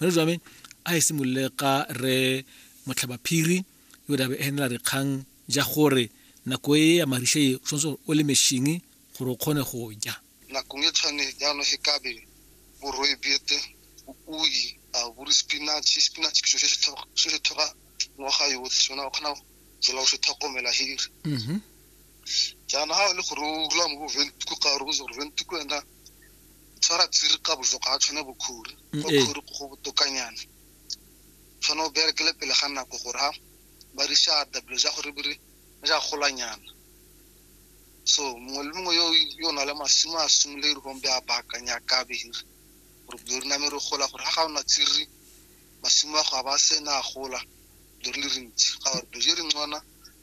re jwa me a e simolole ka re motlhabaphiri yo dabe enela re kgang ja gore nako e ya marisha e tshwanetse o le mešhingi gore o kgone go ja nakong e tshwane jalo he kabe boroi bete ui a buri spinach spinach ke se se thoga ngwaga yotlhe sona o kgona jela o se tlhokomela hiri mhm. jaanong ga o le gore o rula mo boventiko ka gore o itse gore ventiko ena tshwara tsiri ka bojo ga a tshwane bokhori mm, ko khori eh. go botokanyana tshwane o berekele pele ga nako gore ha ba re shata bilo ja gore bere ja golanyana so mongwe le mongwe yo yo na le masimo a simole re gombe a baakanya ka behiri gore bilo re name re gola gore ha ga ona tsiri masimo a go a ba sena a gola bilo re le rentsi ga gore bilo je re ngwana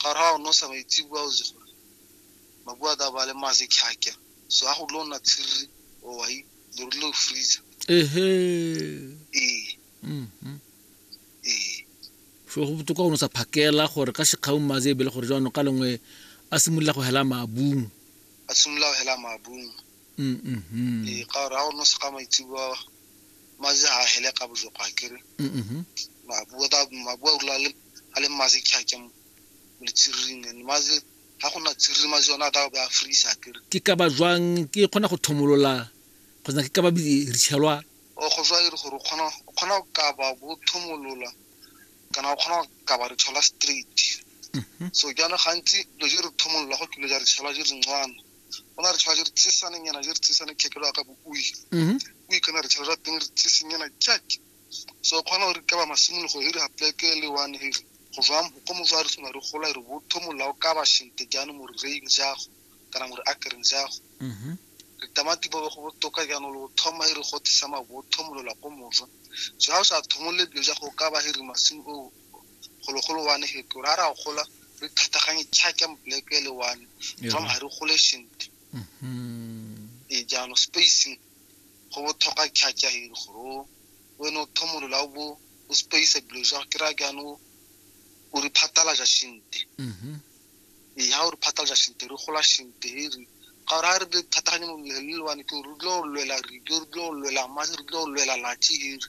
gare ga one o sa maitsebua o itse gore mabua a tla ba le mase khyakya so a go dilo nna tshiriri o wa leru le freezer ehe ee mhm ee so go botoka o ne o sa phakela gore ka sekgaung maze ebele gore jaanong ka lengwe a simolola go hela maabung a simolola go hela maabung mm, mm, mm. ee ka gore ga o no sega maitseboa mazi ga a hele ka bojoko ga kere mabua o rula a le mazi kgake mo letsiriring and mazi ga go na tsiriri mazi yone a ka be a freeze a kere ke ka ba jwang ke kgona go thomolola kgotsa ke ka ba bitshelwa o go jwa e re gore o kgona go ka ba bo thomolola kana o kgona go ka ba re thola straight so jaana gantsi dilo je re thomolola go kile ja re tshela je re ncwana go na re tshwara re tsisane nyana je re tsisane khekelo ya ka bo o ile mhm. o ikana re tshwara ra teng re tsise nyana jack so khona gore ka ba masimolo go hiri hapleke le one hiri go jwa mo go mo jwa re sona re gola re botho molao ka ba shinte jano mo re reing jago kana mo re akereng jago mhm. re tamati ba go botoka jano lo thoma hiri go tsisa mabotho molola go mojo so ha o sa thomole bjo jago ka ba hiri masimo o golo-golo one heto ra ra gola re thataganye tšhake black e le one jang ga re gole sentle mm-hmm. e jaanong spacing go botlhoka tšhake hiri gore wena o thomolola o bo o space dilo ja ke ra jaanong o re phatalaja sentle mm-hmm. ee ga o re phatalaja sentle re gola sentle hiri ga ra re thataganye mo le le one ke re dilo lwela re dilo lwela ma re dilo lwela latsi hiri